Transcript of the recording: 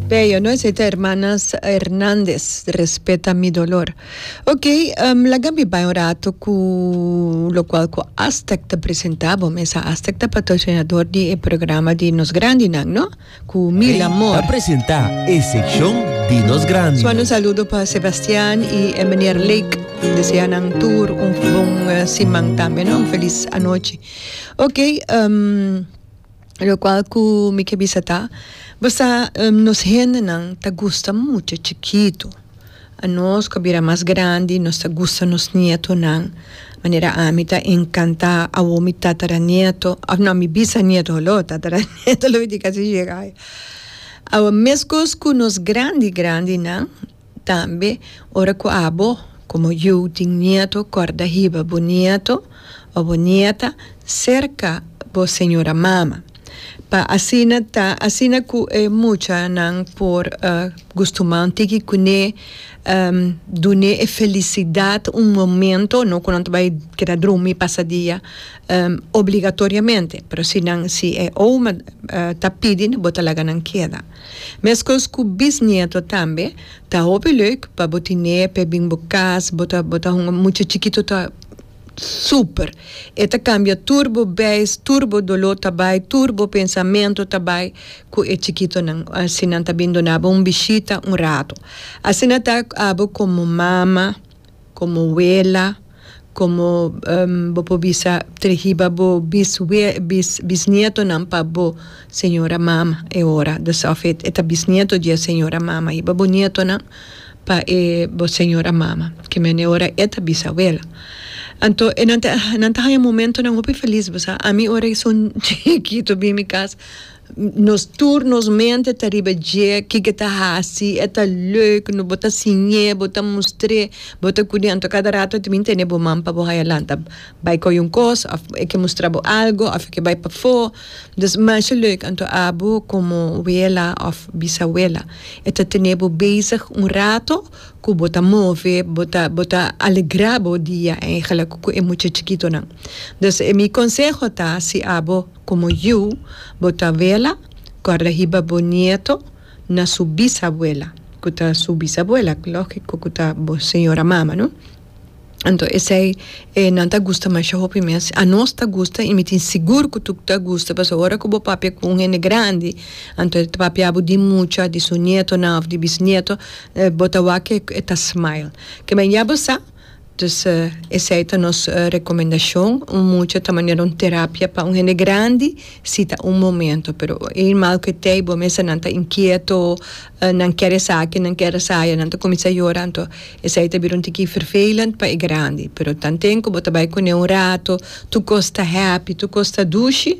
Bello, no esei ta hermanas Hernandez, respeta mi dolor. Ok, um, laga mi bai un rato cu locual cu Aztec ta presenta bo mesa. Aztec ta patrocinador di e programa di Nos Grandinan, no? Cu mil amor. Ta presenta e seccion di Nos Grandinan. Suando un saludo pa Sebastian y e meneer Lake. Desea nan tur un bon siman tambe, no? Un feliz anochi. Ok, um. Locual cu mi ke bisa ta, basta nos hendenan ta gusta mucha chikitu. Anos cu a bira mas grandi nos ta gusta nos nietonan, manera ami ta encanta awo mi tataranieto, of no mi bisanieto holo, tataranieto lo mi tin casi shega ai. Awa mescos cu nos grandi grandinan. Tambe ora ku abo komo yu tin nieto kòrda hiba bo nieto o bo nieta serka bo señora mama pa asina ta asina ku e muchanan por gustumá un tiki kuné dun'é e felisidat un momento no ku nan ta bai keda drumi pasadia obligatoriamente pero si nan si e ouma ta pidi bo ta laga nan keda. Mescos cu bisnieto tambe, ta hopi leuk pa bo tine p'e bin bo cas, bo ta bo ta hunga mucha chikito ta super, e ta cambia tur bo beis, tur bo dolo ta bay, tur bo pensamento ta bay cu e chikitonan, si nan ta bin dona bo un bishita un rato. Asina ta abo como mama. Komo wela, komo bo por bisa tre hiba bo bisnietonan pa bo señora mama e ora, desof e ta bisnieto di e señora mama hiba bo nietonan pa e bo señora mama, ke men e ora e ta bisawela. Anto e nan ta haña momentonan hopi felis bo sa, ami ora i son chikitu bin mi kas Nos tur nos mente ta riba dje, kiko e ta hasi, e ta leuk, no bo ta siñ'é, bo ta mustr'é, bo ta kud'é. Anto kada rato ta bin tene bo man pa bo haya lanta bai koge un kos òf e ke mustra bo algu òf e ke bai pafó. Dus masha leuk anto abu komo wela òf bisawela e ta tene bo bezig un rato ku bo ta move, bo ta bo ta alegrá bo dia en e gelag ku e mucha chikitonan. Dus e mi konseho ta si abu. Como yu, bo ta abuela cu a rehiba bo nieto na su bisabuela, cu ta su bisabuela, logico cu ta bo señora mama, no? Anto esey e nan ta gusta masha hopi mes, a nos ta gusta y mi tin sigur cu tu ta gusta, pasobra ora cu bo papia cu un hende grandi, anto e ta papia bo di mucha, di su nietonan of di bisnieto, bo ta wak cu e ta smile. Kibay ya bo sa. Dus esei ta nos rekomendashon. Un mucha ta manera un terapia pa un hende grandi si ta un momento. Pero e irman ku e tei bo mester nan ta inkieto, nan ker esaki, nan ker asaya, nan ta kuminsá yora, anto esei ta bira un tiki vervelend pa e grandi. Pero tanten ku bo ta bai kuné un rato, tur kos ta hèpi, tur kos ta dushi.